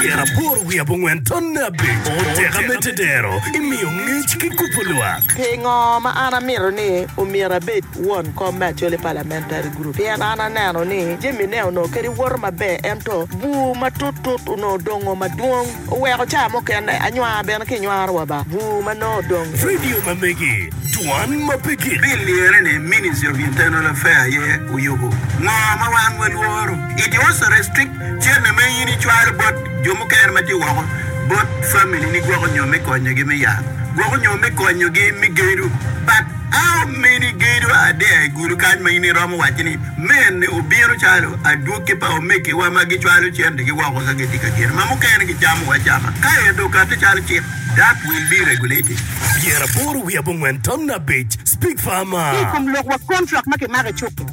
Pyera aboro wiye abongwen tonne abic oteka me tedero i miyo ngec ki kubo lwak. Pingo ma an amito ni omyero abed won kom me Acholi Parliamentary Group? Pien an aneno ni jamine onongo kadi woto maber ento bur matut tut onongo dongo madwong oweko ca mukene anywar bene ki nywaro wa ba bur ma nongo odong. Radio ma megi, Dwan ma pe gik. Bill lirre ni Ministry of Internal Affair aye oyubo ngo ma wan walworo. It was a restricted. Cente ma in icwalo bot jo mukene ma tye woko bot familini gwoko nyo me konyogi me yat, gwoko nyo me konyogi me gedo. But how many gedo are there i gulu kany ma in iromo wacci ni mene obino calo adwoki pa omegiwa ma gicwalo centegi woko ka gitye ka gedo ma mukene gicamo acama ka ento okati calo cik? That will be regulated. Pyeraboro wiye abongwen tam abic, Speak farmer. Ki i kom lokwa, kontrak ma kimako i cuk-ki.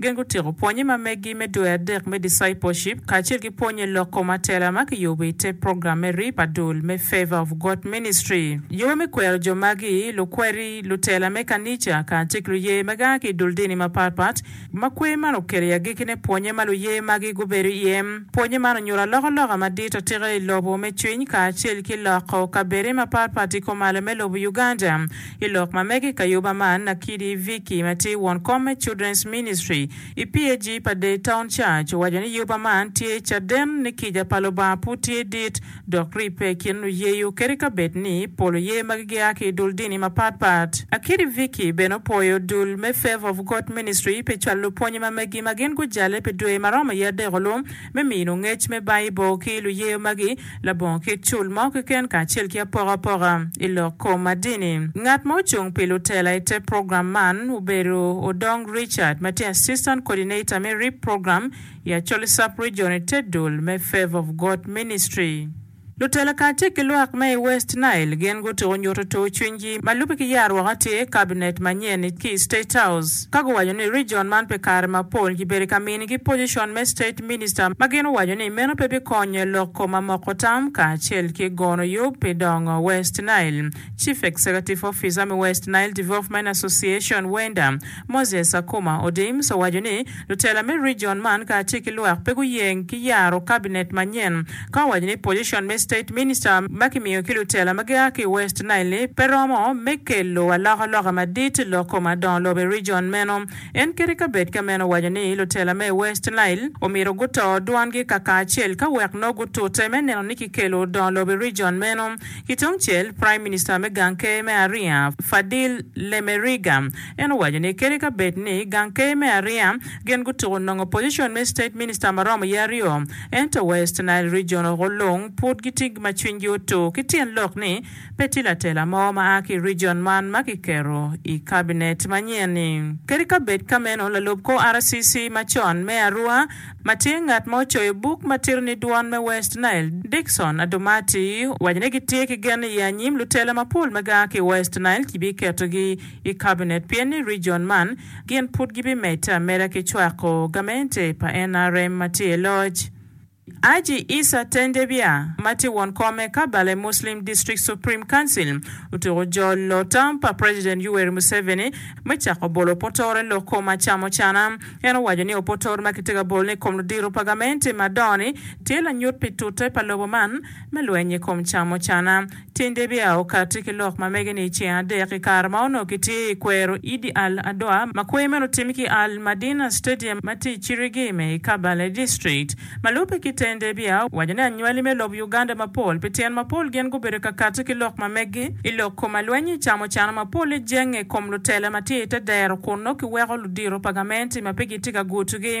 Gin gutyeko pwonye ma meggi me Dwe Adek me Discipleship kacel ki pwonye lok kom atela ma kiyubo i te program me Rip Adul me Favor of God Ministry. Yobe me kwero jo magi, lukweri, lutela me kanica, kacel ki luye ma gia ki i dul dini mapat pat, ma kwer man okelo i agekkine pwonye ma luye magi gubedo iye. Pwonye man onyuto alokaloka madit atika i lobo me cwiny kacel ki loko kabedde mapat pat i kom alo me lobo Uganda. I lok ma mege i kayuba man, Nakidi Vicky ma tye won kom me Children's Ministry i PAG pa Daytown Church owaco ni yuba man tye caden ni kica pa Lubanga pud tye dit dok ribbe i kin luyeyo kadi ka bed ni pol oye magi gia ki i dul dini mapat pat. Nakidi Vicky bene opwoyo dul me Favour of God Ministry pi cwalo lupwonye ma megi ma gin gujale pi dwe ma romo iye adek-olu. me mino ngec me Baibul ki luyeyo magi labongo kit cul mo keken kacel ki apokapoka i lok kom ma dini. Ngat ma ocung pi lutela i te program man obedo Odong Richard ma tye Assistant Coordinator me RIP Program i Acholi Sub-Region i te dul me Favour of God Ministry. Lutela kacel ki lwak me i West Nile gin gutuko nyuto tur cwinygi ma lubbe ki yaro woko atir kabinet manyen-ni ki i State House ka guwaco ni rijion man pi kare mapol kibedo ka minigi pojicon me State Minister ma gin owaco ni meno pe bikonyo lok kom amoko tam kacel ki gono yub pi dongo West Nile. Chief Executive Officer me West Nile Development Association, WENDA, Moses Akuma Odims owaco ni Lutela me region man kacel ki lwak pe guyeng ki yaro Cabinet manyen ka owaco ni position me State Minister ma kimiyo ki lutela ma gia ki i West Nile-li pe romo me kelo alokaloka madit i loko madongo lobo i region meno. En kit i kabed ka meno owaco ni lutela me West Nile omyero guto dwongi kakacel ka wek nongo gutute me neno ni kikelo dongo lobo i region meno. Kitungcel, Prime Minister me gang ker me Aria, Fadil Lemeriga, En owaco ni kadi ka bed ni gang ker me Aria gin gutuko nongo position me state minister ma romo ye aryo, ento West Nile Region oko lung pud gitye ma cwiny gi otur ki tyen lok ni pe tye latela mo ma a ki region man ma ki keto i cabinet ma nyen ni. Kadi ka bed ka meno lalub kor RCC ma con me Arua ma tye ngat ma ocoyo buk ma tito ni Dwon me West Nile, Dickson Adomati owaco ni gitye ki gen ni i anyim lutela mapol ma gia ki i West Nile ki bi keto gi i Kabinet pien ni rijon man gin pud gibimedde ameda ki cwako gamente pa NRM ma tye i loc. Haji Isa Tendebia ma tye won kom me Kabale Muslim District Supreme Council otuko jolo tam pa President Yoweri Museveni me cako bolo opotore lok kom acamo cana. En owaco ni opotore ma kitye ka bolo-ni i kom ludito pa gamente madongo-ni tye lanyut pi tute pa lobo man me lweny i kom camo cana. Tinde bia okatti ki lok ma mege ni i ceng adek i kare ma onongo kitye i kwero Idi Al Adwa ma kwer meno otim ki Al Madina Stadium ma tye i Chirigime i Kabale District. Ma lubbe ki Tinde bia owaco ni anywali me lobo Uganda mapol pi tyen mapol gin gubedo ka katti ki lok ma megi i lok koma lweny ecamo cano mapol ejenge i kom lutela ma tye i te dero kun nongo kiweko ludito pa gamenti ma pe gitye ka gutugi